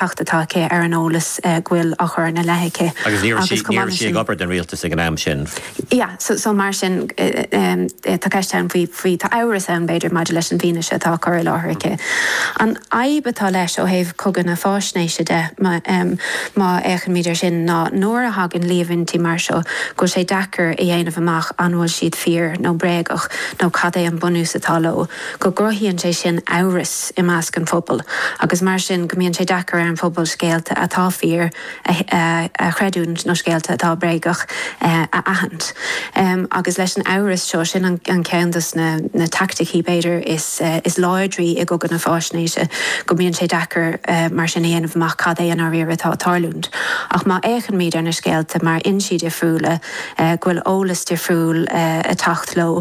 atá aici ar an eolas go bhfuil á chur ina leith aici. Agus ní raibh sí ag obair don rialtas ag an am sin. Yeah, so, so mar sin, tá ceist ann faoi, faoi, tá amhras ann, b'fhéidir, maidir leis an bhfianaise atá á cur i láthair aici. An fhadhb atá leis ó thaobh Chogadh na Faisnéise de, má, má fhéachaimid air sin, ná nuair a thagann líomhaintí mar seo, go bhfuil sé deacair a dhéanamh amach an bhfuil siad fíor nó bréagach nó cad é an bunús atá leo. go gcruthaíonn sé sin amhras i measc an phobail agus mar sin go mbíonn sé deacair ar an phobal scéalta atá fíor a chreidiúint nó scéalta atá bréagach a aithint. Agus leis an amhras seo, sin an ceann de na taicticí, b'fhéidir, is láidrí i gcogadh na faisnéise, go mbíonn sé deacair mar sin a dhéanamh amach cad é i ndáiríre atá ag tarlúint. Ach má fhéachaimid ar na scéalta ó fhoinsí difriúla, go bhfuil eolas difriúil ag teacht leo,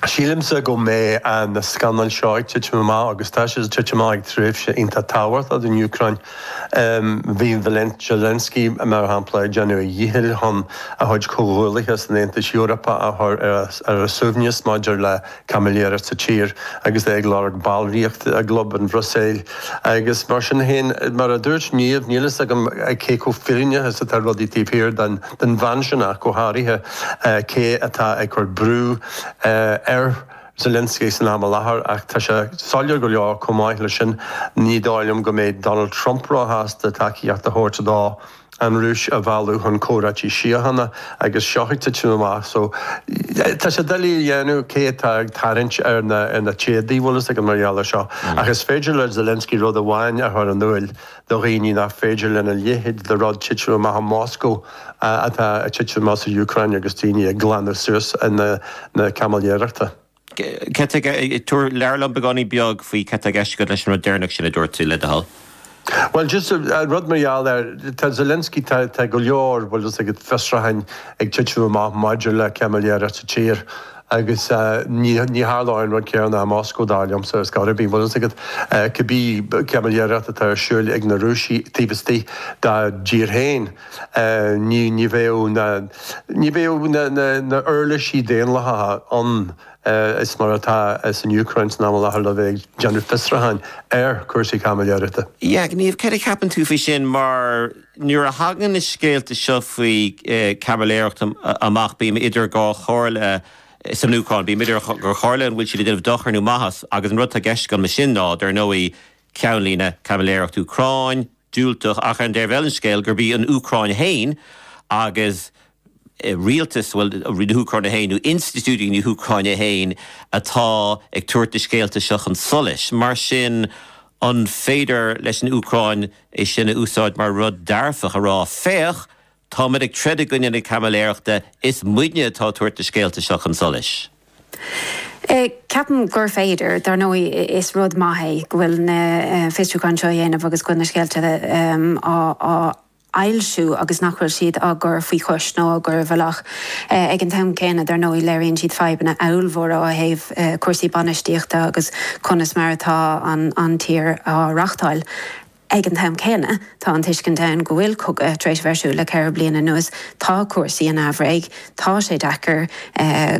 Sílimse go mbeidh na scannail seo ag titim amach agus tá sé ag titim amach ag tréimhse iontach tábhachtach don Úcráin. Bhí Zelensky, mar shampla, ag déanamh a dhíchill chun a chuid comhghuallaithe san Aontas Eorpach a chur ar a suaimhneas maidir le caimiléireacht sa tír agus é ag lorg ballraíocht i gclub an Bhruiséil. Agus mar sin fosta, mar a dúirt Niamh, níl a fhios agam cé chomh fírinneach is atá rudaí taobh thiar den den bhean sin ach go háirithe, cé atá ag cur brú ar Zelensky san am i láthair, ach tá sé soiléir go leor, chomh maith leis sin, ní dóigh liom go mbeidh Donald Trump róshásta tacaíocht a thabhairt dó an Rúis a mhealladh chun comhráití síochána agus seo ag titim amach so tá sé doiligh a dhéanamh cé atá ag tarraingt ar na téadaí bhfuil fhios agat mar gheall air seo ach is féidir le Zelensky rud amháin a chur in iúl do dhaoine nach féidir lena leithéid de rud titim amach i Moscó atá ag titim amach san Úcráin agus daoine ag glanadh suas na caimiléireachta. Labhair liom beagáinín beag faoi cad tá i gceist agat leis an rud deireanach sin a dúirt tú, le do thoil. Bhuel, just rud mar gheall ar, tá Zelensky, tá go leor, bhfuil fhios agat, fiosrúcháin ag titim amach maidir le caimiléireacht sa tír. Agus ní tharlaíonn an rud céanna i Moscó, dar liomsa, go háirithe, bhfuil fhios agat, cibé caimiléireacht atá ar siúl ag na Rúisigh taobh istigh dá dtír féin, ní, ní bheadh na, ní bheadh na huirlisí daonlathacha ann is mar atá san Úcráin san am i láthair le bheith ag déanamh fiosrúcháin ar chúrsaí caimiléireachta. Yeah, Niamh, céard a cheapann tú faoi sin mar. Nuair a thagann na scéalta seo faoi chaimiléireacht amach bím idir dhá chomhairle san Úcráin. Bím idir dhá chomhairle, an bhfuil siad ag déanamh dochair nó maitheas? Agus an rud atá i gceist agam leis sin ná, dar ndóigh, ceannlíne, caimiléireacht Úcráin, diúltach, ach ar an dtaobh eile den scéal gurb í an Úcráin féin agus rialtas, bhuel, na hÚcráine féin, nó institiúidí na hÚcráine féin atá ag tabhairt na scéalta seo chun solais. Mar sin, an féidir leis an Úcráin é sin a úsáid mar rud dearfach, a rá, Féach, táimid ag troid i gcoinne na caimiléireachta, is muidne atá ag tabhairt na scéalta seo chun solais? Ceapaim gur féidir. Dar ndóigh, is rud maith é go bhfuil na fiosrúcháin seo á ndéanamh agus go bhfuil na scéalta á bhfoilsiú agus nach bhfuil siad á gcur faoi chois nó á gcur i bhfolach. Ag an t-am céanna, dar ndóigh, léiríonn siad fadhbanna ábhalmhóra ó thaobh cúrsaí bainistíochta agus conas mar atá an tír á reachtáil. Ag an t-am céanna, tá an tuiscint ann go bhfuil cogadh tar éis a bheith ar siúl le ceithre bliana anuas, tá cúrsaí in aimhréidh, tá sé deacair,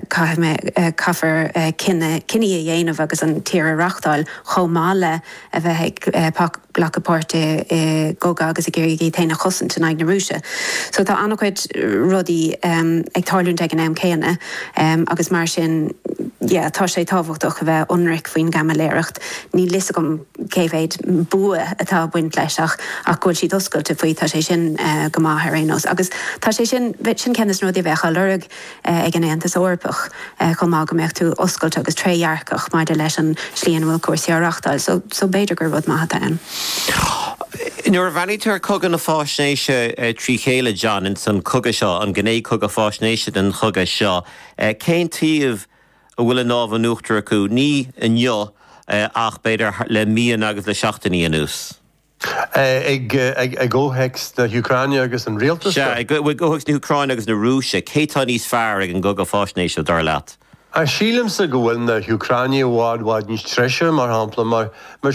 caithfear cinní a dhéanamh agus an tír a reachtáil chomh maith le a bheith ag glacadh páirt i gcogadh agus ag iarraidh í féin a chosaint in aghaidh na Rúise. So tá an-chuid rudaí ag tarlúint ag an am céanna agus mar sin yeah tá sé tábhachtach a bheith ionraic faoin gcaimiléireacht. Níl a fhios agam cé mhéid bua atá ag baint leis ach go bhfuil siad oscailte faoi tá sé sin go maith ar aon nós agus tá sé sin sin ceann de na rudaí a bheadh á lorg ag an Aontas Eorpach chomh maith, go mbeadh tú oscailte agus trédhearcach maidir leis an slí ina bhfuil cúrsaí á reachtáil. So, so b'fhéidir gur rud maith atá ann. Nuair a bhreathnaítear ar chogadh na faisnéise trí chéile, John, ins an chogadh seo, an ghné chogadh faisnéise den chogadh seo, cén taobh a bhfuil an lámh in uachtar acu, ní inniu ach b'fhéidir le míonna agus le seachtainí anuas? I gcomhthéacs na hÚcráine agus an rialtas? Sea, i gcomhthéacs na hÚcráine agus na Rúise. Cé atá níos fearr ag an gcogadh faisnéise, dar leat? Sílimse go bhfuil na hÚcránaigh i bhfad, bhfad níos treise, mar shampla, mar.